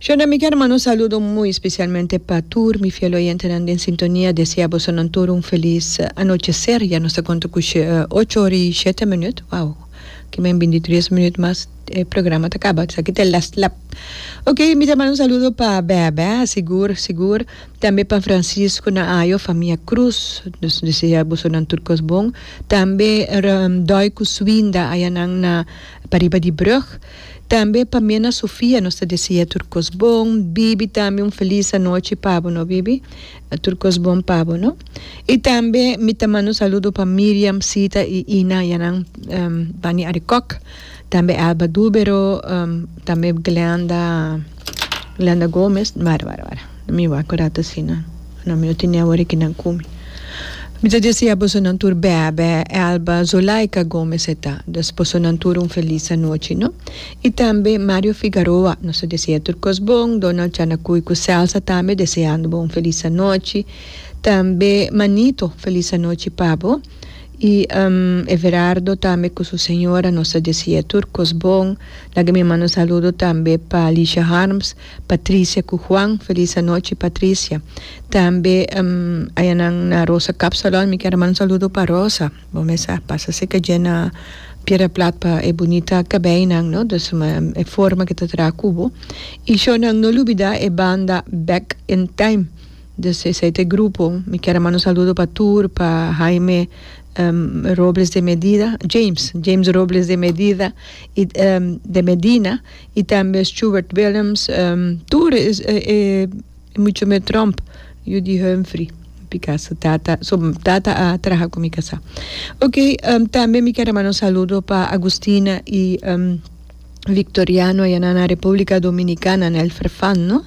Shonra mi kier manda un saludo muy specialmente pa tur mi fiel oyentenan den sintonia, desea bosonan tur un feliz anochecer, ya nos ta conta cu ocho ora y shete minuut, wow, kiba en binti tres minuut mas e programa ta caba, esaki ta e last lap, ok mi ta manda un saludo pa Bebe, sigur sigur, tambe pa Francisco Naayo, famia Cruz, nos desea bosonan tur cos bon, tambe Doico Suinda ayanan na pariba di brug. Tambe pa mi en a Sofia nos ta desia tur kos bon, bibi tambe un felis anochi pa bo no bibi, tur kos bon pa bo no. Y tambe mi ta manda un saludo pa Miriam, Sita y Ina ya nan Bani Arikok, tambe Elba Dubero, tambe Glenda, Glenda Gomez, wara wara wara. Mi wak orat asina. No mi no tin neho ora ki nan kumi. Mi ta disi a bosonan tur bèbè, Elba, Zulaika Gomez eta. Dos bosonan tur un felis anochi no. I tambe Mario Figaroa, nos ta deseá tur kos bon, Donald Chanakuy ku Celsa tambe deseando bo un felis anochi. Tambe Manito felis anochi pa bo. I Everardo tambe ku su señora nos ta deseá tur kos bon. Laga mi manda un saludo tambe pa Lisha Harms. Patricia cu Juan. Feliz anochi Patricia. Tambe aya nan na Rosa Cup Salon mi kier a manda un saludo pa Rosa. Bo mester a pasa si calle na Piedra Plat pa e bunita cabeinan no dus e forma cu ta traha cu bo. Y sho nan no lubida e banda Back in Time dus esey ta e grupo. Mi kier a manda un saludo pa tur pa Jaime Robles de Medida James James Robles de Medida y de Medina. y tambe Stewart Willems tur e mucho me Trump Judy Humphrey mi casa tata so tata a traha cu mi casa ok tambe mi ker a manda un saludo pa Agustina y Victoriano aya nan na Republica Dominicana na el Ferfan no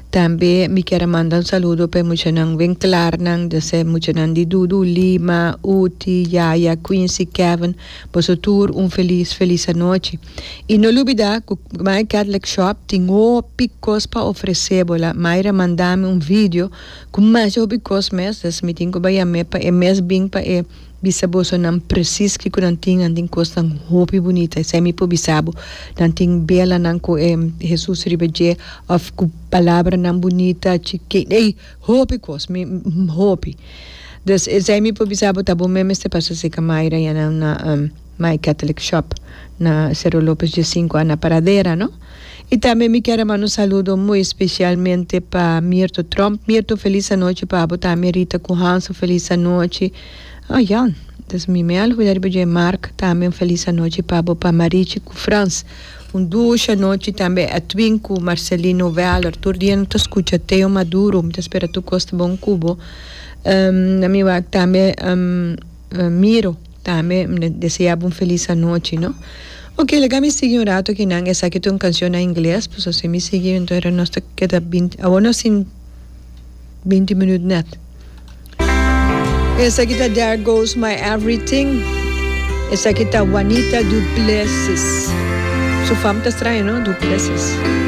tambe mi ker a manda un saludo pa e muchanan wen clar nan de ser muchanan di Dudu Lima Uti Yaya Quincy Kevin boso tur un feliz feliz anochi. I no lubidá ku My Catholic Shop tin hopi kos pa ofresé bo. La Mayra mandá mi un vidio ku mas di hopi kos mes, dus mi tin ku bayam'é pa e mes bin pa e bisa bosonan presis kiko nan tin. Nan tin kosnan hopi bunita. Esei mi por bisa bo. Nan tin belanan ku e Hesus riba dje òf ku palabranan bunita. Ey, hopi kos, mi, hopi. Dus esei mi por bisa bo ta bo mester pa saseka Mayra ya nan na. My Catholic Shop na Cerro Lopez dje sinku ana Pradera no y tambe mi kier a manda un saludo muy especialmente pa Mirto Trump Mirto feliz anochi pa abo tambe Rita cu Hansel feliz anochi oh ya dus mi me a olvida riba dje Mark tambe un feliz anochi pa abo pa Marichi cu Frans un dushi anochi tambe Edwin cu Marcelino Weller tur dia no ta scucha Teo Maduro mi ta spera tur cos ta bon cu bo na mi wak tambe. Miro, tambe N desea bo un felis anochi, no? Oke, laga mi sigui un rato aki nan, esaki ta un kancion na ingles, pasobra si mi sigui enton era nos ta keda binti, awor nos tin binti minut nèt. Esaki ta There Goes My Everything, esaki ta Wanita Duplessis, su fam ta straña, no? Duplessis.